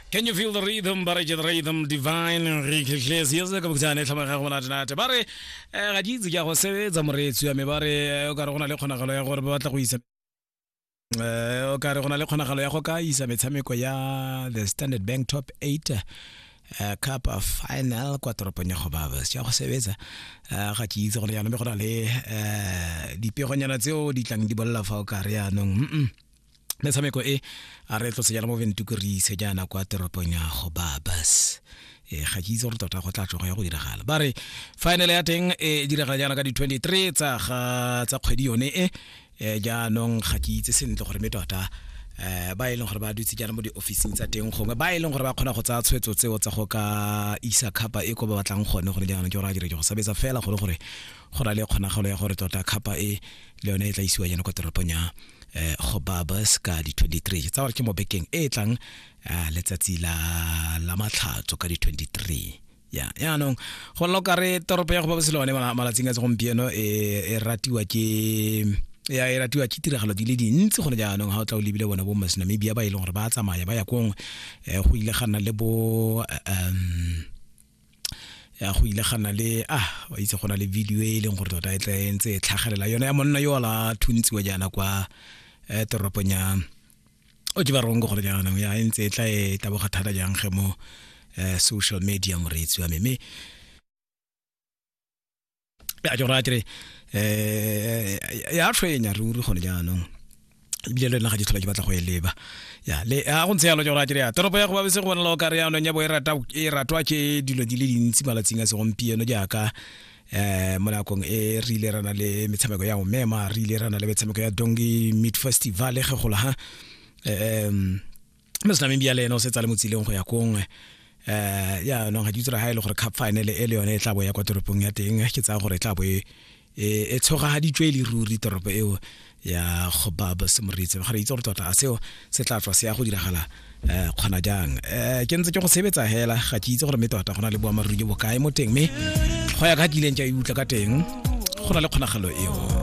Can you feel the rhythm ba re ke rhythm divine re khetlhetse yes ka bokutane tlhama ga gona tnate ba re eh, ga di itse ke a go sebetsa moreetsi ya me ba re eh, o ka re go na le kgonagalo ya gore ba batla go isa eh o ka re go na le kgonagalo ya go ka isa metshameko ya the standard bank top 8 eh, cup of final kwa toropong ya gobabas ya go sebetsa eh, ga ke itse go le yana mme go na le eh, dipegonyana tseo di tlang di bolela fa o ka re yaanong mm -mm. metshameko e a re tlo sejana mo ventuku re ise jaana kwa teropong ya go babas e ga ke itse gore tota go tla tlogo ya go diragala ba re final ya teng e diragala jaana ka di-23 tsa ga tsa kgwedi yone e e jaanong ga ke itse sentle gore mme tota eh ba e leng gore ba dutse jaana mo di-officing tsa teng gongwe ba e leng gore ba kgona go tsaya tshwetso tseo tsa go ka isa khapa e ko ba batlang gone gore jaanong ke gore a dire ke go sabetsa fela gore gore go na le kgonagalo ya gore tota khapa e le yone e tla isiwa jana kwa toropong ya eh, go babas ka di-23 tsa gore ke mo bekeng e e tlang ah, letsatsi la la matlhatso ka di-23 ya yaanong go nna o kare toropo ya go babas le one mala- malatsing a segompieno e e ratiwa ke ya e ratiwa ke tiragalo di le dintsi gone jaanong ga o tla o lebile bona bo masinamibia ba e leng gore ba tsamaya ba ya kong um go ile ga nna le bo eh, um ya go ile gana le ah wa itse go na le video e leng gore tota e tla e ntse e tlhagelela yone ya monna yo la thuntsiwa jaana kwa eh, toropong ya o ke ba rongo gore jaanong ya e ntse e tla e taboga thata jang ge mo eh, social media moreetsi wa me mme ya jora kere eh ya tshwenya ruri gone jaanong ebile le nna ga ke tlhola ke batla go e leba ya le a go ntse yalo jora kere ya toropo ya go babese go bona le o kare yanong ya bo e rata e ratwa ke dilo di le dintsi malatsing a segompieno jaaka eh mo nakong e re ile rana le metshameko ya omema re ile rana le metshameko ya dongi meat festival ge gola ha um mme se nameng bia le ene o setsa le motsileng go ya kongwe um yaanong ga ke itse gore ga e le gore cup final e le yone e tla bo ya kwa toropong ya teng ke tsaya gore e tla bo e e tshogagaditswe e le ruri toropo eo ya go ba ba semoritse ga re itse gore tota a seo se tla tswa se ya go diragala um kgona jang um ke ntse ke go sebetsa hela ga ke itse gore mme tota go na le boamaruri jo bokae mo teng mme go ya ka kileng ke a e utlwa ka teng go na le kgonagalo eo